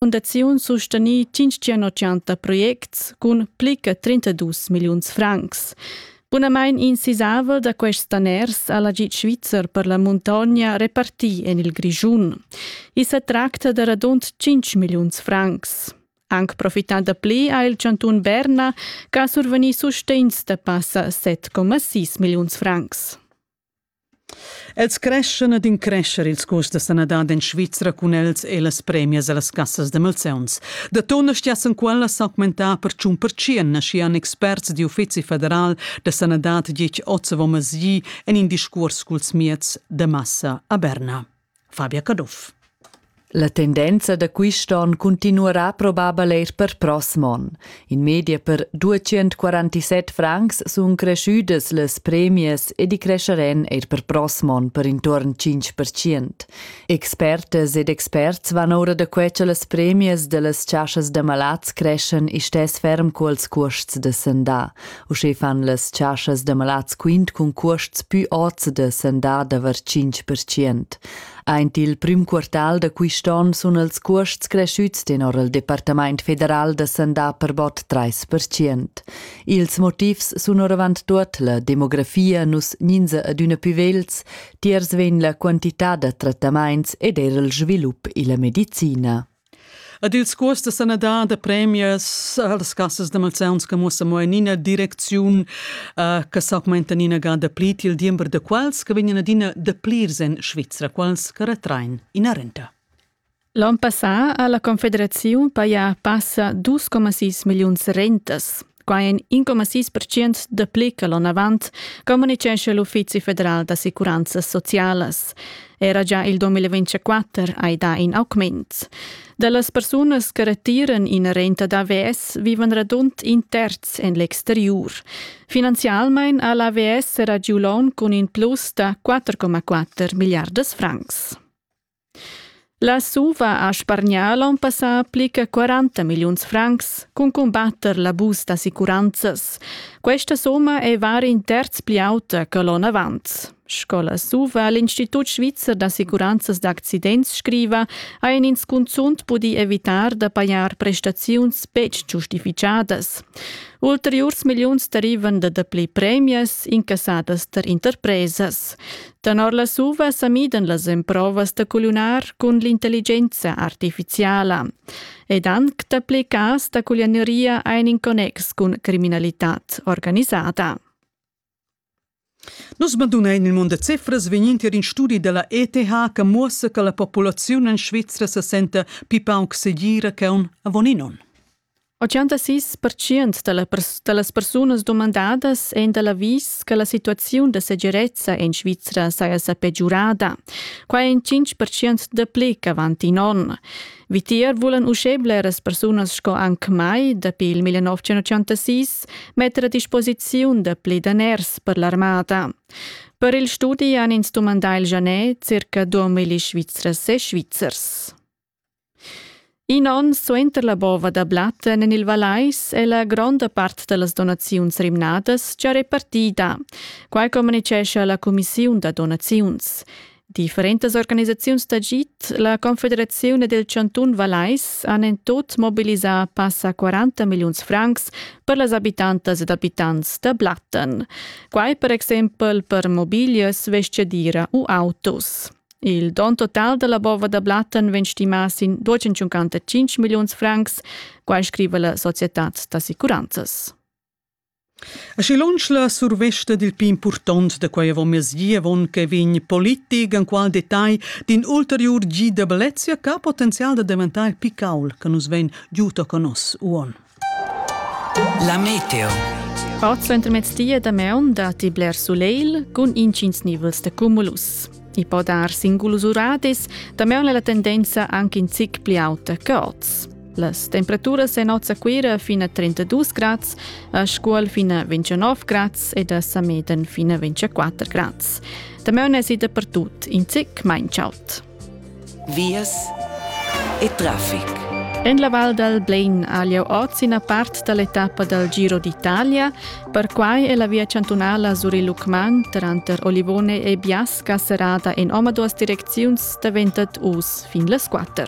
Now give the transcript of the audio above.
Fundaziun sustenì 580 projects cun pli che 32 milliuns francs. Bunamain in sisavel da quests daners ha l'agid svizzer per la muntogna repartì en il Grischun. I sa tracta da radund 5 milliuns francs. Anc profità da pli ha il chantun Berna, che ha survegnì sustegns da passa 7,6 milliuns francs. Els creschan ed increschan ils custs da sanadad en Svizra cun els e las premias a las cassas da malsauns. Da tona stiassan quellas s'augmentar per tschun percient, naschian experts di uffizi federal da sanadad ditg oz avon mezdi en in discuors culs mieds da massa a Berna. Fabia Caduff. La tendenza da quist on cuntinuarà probabel eir per prossm on. In media per 247 francs sun creschüdas las premias ed i crescheran eir per prossm on per intuorn 5%. Expertas ed experts van oura da que cha las premias da las chasas d'amalats creschan istess ferm culs cuosts da sandà. Uschè fan las chaschas da malats quint cun cuosts pü ots da sendar daver 5%. Aint il prüm quartal da quist on sun els cuosts creschüts tenor il Departamaint federal da sandà per bod 30%. Ils motivs sun oravant tuot la demografia nus gninza adüna pü vegls, tiers vegn la quantità da trattamaints ed eir il svilup illa medicina. Ed ils cuors da sanadad da premias las cassas da malsauns che muossan mo en ina direcziun uh, che s'augmentan ina gada pli til diember da quals che vegnan adina da plirs en Svizra, quals che retrain ina renta. L'on passà ha la Confederaziun pajà passa 2,6 milliuns rentas. Quai è in coma sis percent dapli che l'onavant, communicescha l'Uffizi federal d'assicuranzas socialas. Era già il 2024 hai dà in augment. Da las persunas che retiran ina renta d'AVS vivan radund in terz en l'exteriur. Finanzialmain ha l'AVS era giu l'onn cun in plus da 4,4 milliardas francs. La SUVA ha spargnà l'onn passà pli che 40 milliuns francs cun cumbatter l'abus d'assicuranzas. Questa summa è var in terz pli auta che l'onn avant. Sco la SUVA l'Institut svizzer d'assicuranzas d'accidents scriva, ha in ins cunzunt pudì evitar da pajar prestaziuns betg giustificadas. Ulteriurs milliuns derivan da dapli premias incassadas tar interpresas. Tenor las uva sa midan las emprovas da culiunar cun l'intelligenza artificiala. Ed anc dapli cas da culianeria ein in connex cun criminalitad organisada. Nus bandunein il mund da cifras vegnin tier in studi dalla ETH che muossa che la populaziun en Svizra se senta pi pauc segira che un avon in onn. 86 pertschient da, la pers- da las persunas dumandadas èn da l'avis che la situaziun da segirezza en Svizra saja sa pegiurada. Quai è in 5 pertschient dapli ch'avant in onn. Vitier vulan uschè bleras persunas sco anc mai, dapi il 1986, metter a disposiziun dapli daners per l'armada. Per il studi han ins dumandà il Janet circa 2000 Svizras e Svizzers. In onn suenter la bova da Blatten en il Vallais è la gronda part da las donaziuns rimnadas gia repartida. Quai communitgescha la cumissiun da donaziuns. Differentas organisaziuns d'agid, la Confederaziun ed il chantun Vallais han en tut mobilisà passa 40 milliuns francs per las abitantas ed abitants da Blatten. Quai per exempel per mobiglias, vestgadira u autos. Il don total dalla bova da Blatten vegn stimà sin 255 milliuns francs, quai scriva la societad d'assicuranzas. A schi lunsch la survesta dil più impurtont da quei avomesdi avon che vegn politic en qual detagl din ulteriur GWC che potenzial da diventare picaul che nus ven giuto con nos uon. La meteo. Part suenter mezdia da maun datti bler sulegl cun intgins nivels da cumulus. I po dar singulus uradis, da maun è la tendenza anche in zic pli auta che oz. Las temperaturas en Oz a Cuira fino a 32 gradi, a Scuol fino a 29 gradi ed a Sameden fino a 24 gradi. Da maun è si dappertut in zic mai ciaut. vias e traffic. En la Val dal Blein ha lieu oz ina part da l'etappa dal Giro d'Italia. Perquai è la via chantunala sur il Lucmagn tranter Olivone e Biasca serrada en omaduas direcziuns daventat uss fin las quatter.